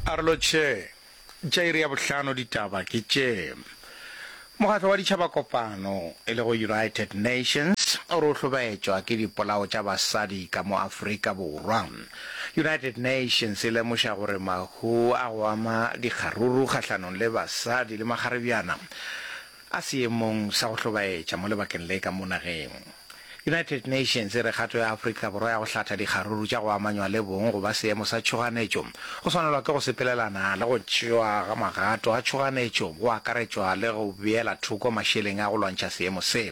Arlo Che, tša iri ya bohlano ditaba ke tše. Mokgatlo wa Ditšhabakopano, e lego United Nations, o re o hlobaetšwa ke dipolao tša basadi ka mo Afrika Borwa. United Nations e lemoša gore mahu a go ama dikgaruru kgahlanong le basadi le makgarebjana a seemong sa go hlobaetša mo lebakeng le ka mo nageng. United Nations e re kgato ya Afrika Borwa ya go hlatha dikgaruru tša go amanywa le bong go ba seemo sa tšhoganetšo go swanelwa ke go sepelelana le go tšewa ga magato a tšhoganetšo go akaretšwa le go beela thoko mašeleng a go lwantšha seemo se.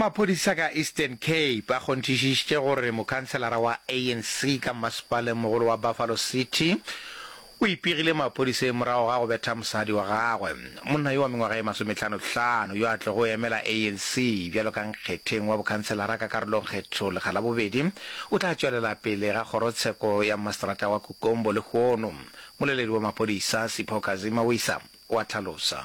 Maphodisa ka Eastern Cape a kgonthišišitše gore mokhanselara wa ANC ka mmasepalengmogolo wa Buffalo City o ipegile maphodiseng morago ga go betha mosadi wa gagwe. Monna yo wa mengwaga e masometlhanotlhano yo a tlogo emela ANC bjalo ka nkgetheng wa bokhanselara ka karolongkgetho lekga la bobedi o tla tšwelela pele ga kgorotsheko ya mmaseterata wa Kukombo lehono, moleledi wa maphodisa Sipho Kazima-Wisa o a hlalosa.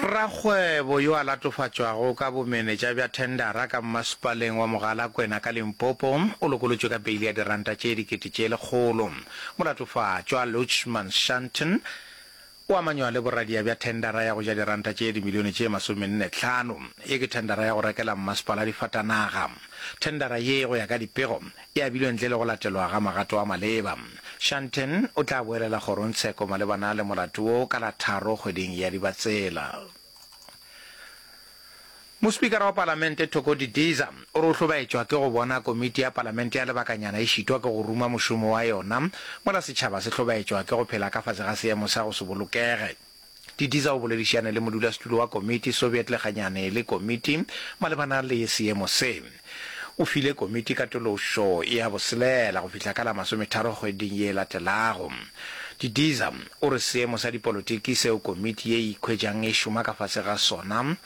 Rakgwebo yo a latofatšwago ka bomenetša bja thendara ka mmasepaleng wa Mogalakwena ka Limpopo o lokolotšwe ka beili ya diranta tše dikete tše lekgolo. Molatofatšwa Lutchman Shanton o amanywa le boradia bja thendara ya go ja diranta tše dimilione tše masomenne tlhano. Ye ke thendara ya go rekela mmasepala difatanaga. Thendara ye go ya ka dipego e abilwe ntle le go latelwa ga magato a maleba. Shanten o tla boelela kgorongtsheko malebana le molato wo ka la tharo kgweding ya Dibatsela. Mospikara wa palamente Thoko Didiza o re o hlobaetšwa ke go bona komiti ya palamente ya lebakanyana e šitwa ke go ruma mošomo wa yona mola setšhaba se hlobaetšwa ke go phela ka fase ga seemo sa go se bolokege. Di disa o boledišane le modulasetulo wa komiti, Soviet Leganyane le komiti malebana le seemo se. O file komiti katološo ya boselela go fihla ka la masometharo kgweding ye e latelago. Di disa o re seemo sa dipolotiki seo komiti ye e ikhwetšang e šoma ka fase ga sona,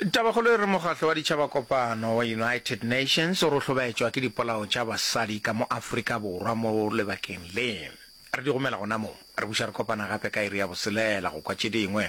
Tabakgolo e re Mokgatlo wa Ditšhabakopano wa United Nations o rohlobetšwa ke dipolao tša basadi ka mo Afrika Borwa mo lebakeng le. Re di gomela gona mo. Re buša re kopana gape ka iri ya boselela go kwa tše dingwe.